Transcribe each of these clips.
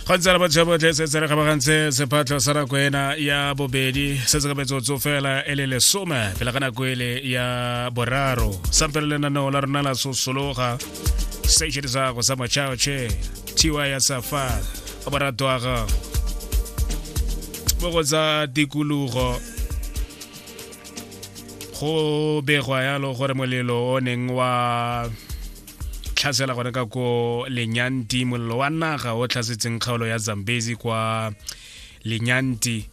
go ntse re batšha botlhe se se re kgabagantse sephatlho sa nako ena ya bobedi se se ka metsotso fela e le lesome pele ga nako ele ya boraro sampele lenaneo la rona la sosologa station sa go sa machaoche tiwa ya safa a borato a gago mo go tsa tikologo go begwa yalo gore molelo o neng wa tlhasela gone ka ko lenyanti molelo wa naga o tlhasetseng kgaolo ya zambezi kwa lenyanti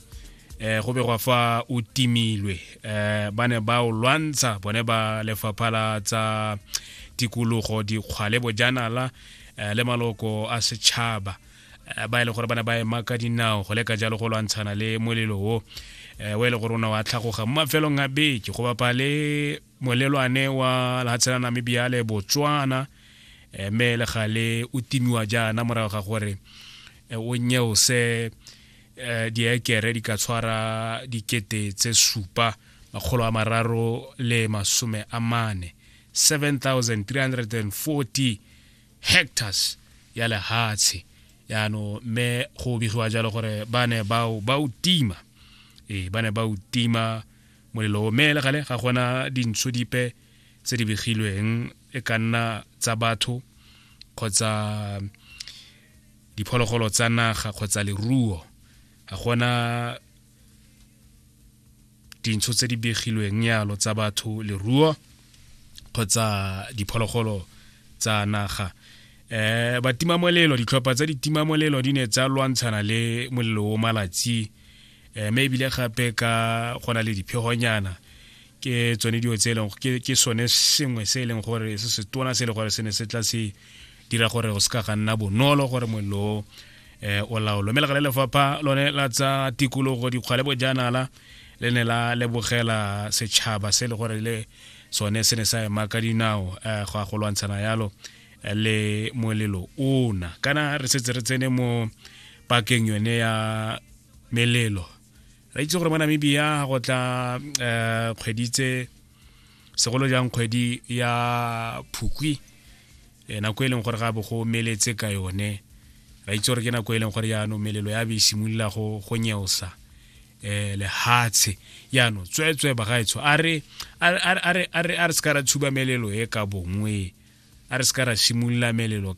eh go be gwa fa o timilwe eh ba ne ba o lwantsha bone ba lefapha la tsa tikologo dikgwale bojanala eh, le maloko a setšhaba eh, ba e le gore ba ne ba ema ka dinao go leka jalo go lwantshana le molelo o eh, o e le gore o ne wa tlhagoga mo mafelong a beke go bapa le Molelwane wa lehatshe la Namibia le Botswana eh, mme le gale o timiwa jaana morago ga gore eh, o nyeose eh, diekere di ka tshwara dikete tse supa makgolo a mararo le masome a mane 7340 hectares ya lehatshe yaano mme go begiwa jalo gore ba ne bao ba o tima ee ba ne ba o tima Molelo o me le gale ga gona dintsho dipe tse di begilweng e ka nna tsa batho kgotsa diphologolo tsa naga kgotsa leruo ga gona dintsho tse di begilweng yalo tsa batho leruo kgotsa diphologolo tsa naga eh batimamolelo ditlhopha tsa ditimamolelo di ne tsa lwantshana le molelo o malatsi um mme ebile gape ka go na le diphegonyana ke tsone dilo tse e leng ke sone sengwe se e leng gore se se tona se e leng gore se ne se tla se dira gore go se ka ga nna bonolo gore mollo eh o laolo mme legale lefapha lone la tsa tikologo dikgwa le bojanala le ne la lebogela setšhaba se e le gore le sone se ne sa ema ka dinao um go a go lwantshana yalo le molelo ona kana re setse re tsene mo pakeng yone ya melelo re itse gore mo namibia go tla um kgwedi tse segolo jang kgwedi ya phukwi eh, nako e leng gore ga bo go meletse ka yone ra itse gore ke nako e leng gore jaanong melelo ya be e simolola go go nyeosa eh lehatshe yano tswetswe bagaetsho a re a re a re a re se ka ra tshuba melelo e ka bongwe a re se ka ra shimolola melelo